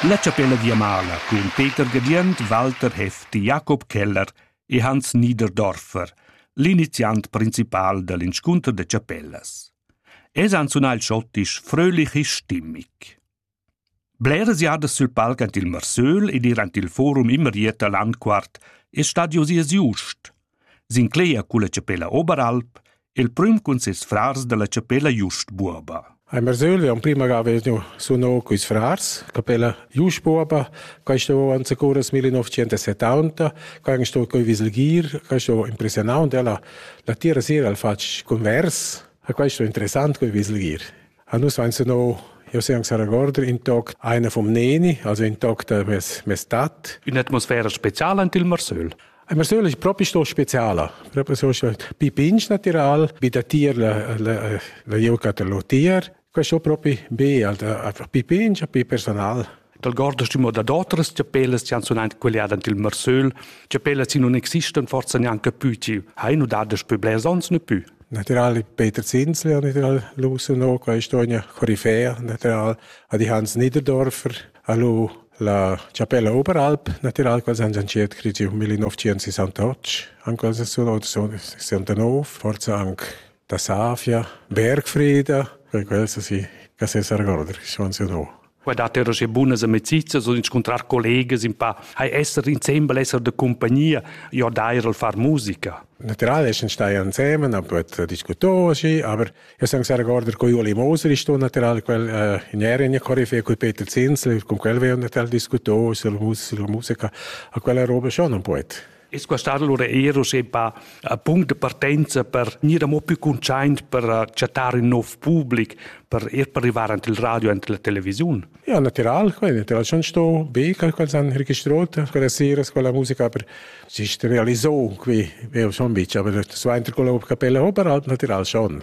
La chapella viamala cun Peter Gadient, Walter Hefti, Jakob Keller e Hans Niederdorfer, l'iniziant principal da l'inscunter da chapellas. Els han sunà il schottisch fröhlich e stimmig. Bleras jadas sül palc ant il Marsöl ed ir ant il forum immer Ieta Landquart è stadi oz ies just. S'inclegia culla chapella Oberalp, il prüm cun ses frars dalla chapella Just Buoba. Ein Barzöli emprima ga vegniu suno culs frars, capella Just Buoba, questa vo anzi curas 1970, che ein sto coi viselgir, che sto impressionau und ella la tira sera al fatg convers, ha questo interessant coi viselgir. A nus vains no, io se ans regorder in toc einer vom Neni, also in toc da mes, mes tat. Un'atmosfera speciala ant il Marsöl. Il Marsöl è proprio sto speciale, proprio so pi pinch natural, bi da tier la, la, la Eucaterlotier. Questo è proprio be, pi pinch, pi personal. Dal guardastimo dad otras chapellas ci han sunaint queliada ant il Marsöl, chapellas in non existan forza neanche più ci, ha in udadas pü blers ons ne più. Natural Peter Zinsli hat natural Lusen auch, ist eine Koryphäe natural, hat die Hans Niederdorfer, alu la chapella Oberalp, natural quals han gianchiert crigi 1968, anche quals sul 69, forza anche da savia, Bergfreda, per quels si che se s'argorda chi son se no. Qua dat er che bunas amicizias und incontrar collegas in pa hai esser insieme esser de compagnia ja dair al far musica. Natural ist stai ansemen, aber diskutoa și, aber eu sunt sehr gorder cu Ioli Moser, ist natural quel uh, in Erien Koryphäe, cu Peter Zinsel, con quel veo natural discuto, sulla musica, a quella roba schon un poet. Es quest allura eir uschè pa a punct de partenza per gnir amo più cuntschaint per eh, chattar ün nov public, per ir per arrivar ant il radio e ant la televisiun? Ja, natural, quel natural schon sto be quel quels han registrot quella sera quella musica per sich realisò qui, veo schon bici, aber das war inter quella capella, aber halt natural schon.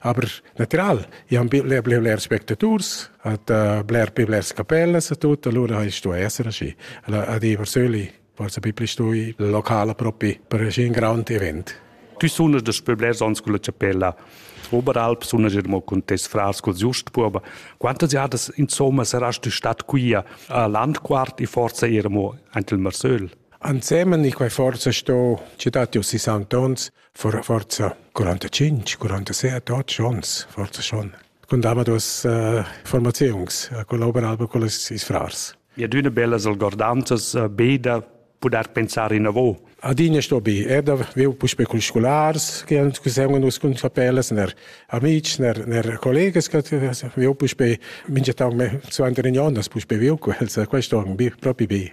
Aber natural, i han bler bler bler spectators, hat uh, bler più blers capellas e tutto, allora hai stu essere asci. Allora a di persöli, forse più pli stu il locale proprio per un grand event. Tu sunas das per blers ans con la chapella Oberalp, sunas er mo con tes frars col Just Buoba. Quantas jadas insomma saras tu stat qui a Landquart e forse era mo anche il Marsöl? Ansemen, ich war forse sto città di 60 ans, For forza 45, 47, 8 ons, forza schon. Con dava dos uh, formaziuns, uh, collaboran alba con les is frars. Ja, d'una bella algordanzas uh, beda poder pensar in avo. Adina sto bi, er da viu puspe cun scolars che han che segon us cun papelas ner amici ner ner collegas che viu puspe minge tau me zu andere non das puspe viu quels questo bi propi bi.